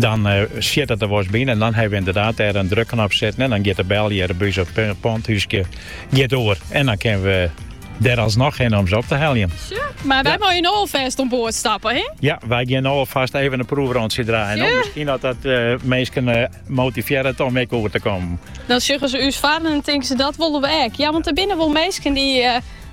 Dan sjit it der wolris by yn en dan hawwe we ynderdaad dêr in drukknop sitten en dan giet de bel hjir by ús op it poantthúskje giet oer en dan kinne we dêr alsnoch hinne om se op te heljen. Sjoch, mar wy meie no alfêst oan board stappe, hè? Ja, wy gean no alfast even in proefrontsje draaien. Sjoch. Miskien dat dat eh, minsken eh, motivearret om ek oer te komen. Dan sjogge ze ús farren en tinke se dat wolle we ek. Ja, want er binnen wel minsken die eh,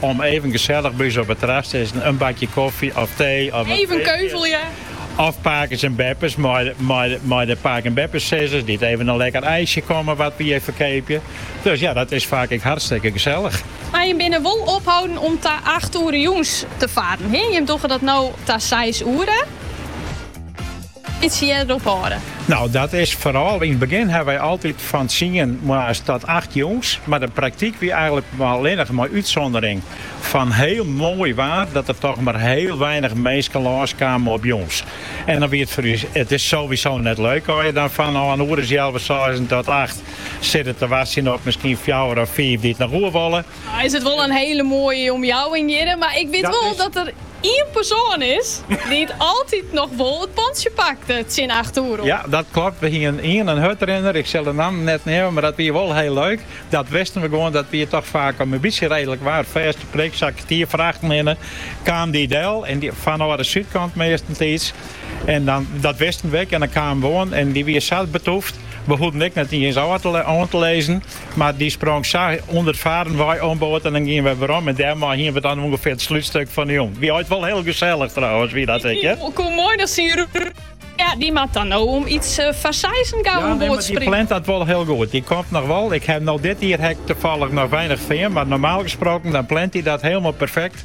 Om even gesellich by ús op it terras te sitten, in bakje koffie of tee of wat. Even keuvelje. Of pakes en beppes mei de pake- en beppesizzers dy't even in lekker ijsje komme wat wy hjir ferkeapje. Dus ja, dat is faak ek hartstikke gesellig. Mar jim binne wol opholden om ta acht oere jûns te farren, jim dogge dat no ta seis oere. Bytsje earder ophâlde. Nou, dat is foaral yn it begjin ha wy altyd fan tsien moarns tot acht jûns. Mar de praktyk wie eigenlik allinnich mei útsûndering fan hiel moai waar dat der toch mar hiel weinich minsken lâns kamen op jûns. En dan wie it foar ús, it is sowieso net leuk as je dan fan in oer as healwei seizen tot acht sitte te wachtsjen op miskien fjouwer of fiif dy't noch oer wolle. Nou is it wol in hele moaie omjouwing hjirre, mar ik wit wol dat der ien persoan is dy't altyd noch wol it pontsje pakte tsjin acht oere oan. Ja, dat klopt. We hienen ien, in hurdrinner, ik sil de namme net neame, mar dat wie wol hiel leuk. Dat wisten we gewoan, dat wie toch faak as 't mar in bytsje redlik waar, fêste prik, sa kertier foar achten hinne, kaam dy del en fanôf de súdkant meastentiids. En dan, dat wisten we ek en dan kamen we oan en dy wie sa betûfd, we hoeden ek net iens oan te lizzen. Mar dy sprong sa ûnder 't farren wei oan board en dan giene wy werom en dêrmei hiene we dan ûngefear it slutstuk fan 'e jûn. Wie altyd wol hiel gesellich trouwens, wie dat ek, hear? Koe moai noch syn rûn. Ja, dy moat dan no om iets foar seizen gau oan board springe. Dy plant dat wol hiel goed. Dy komt noch wol. Ik haw him no dit jier ek tefallich noch weinich fearn, mar normaal gesproken dan plant dy dat hielmol perfekt.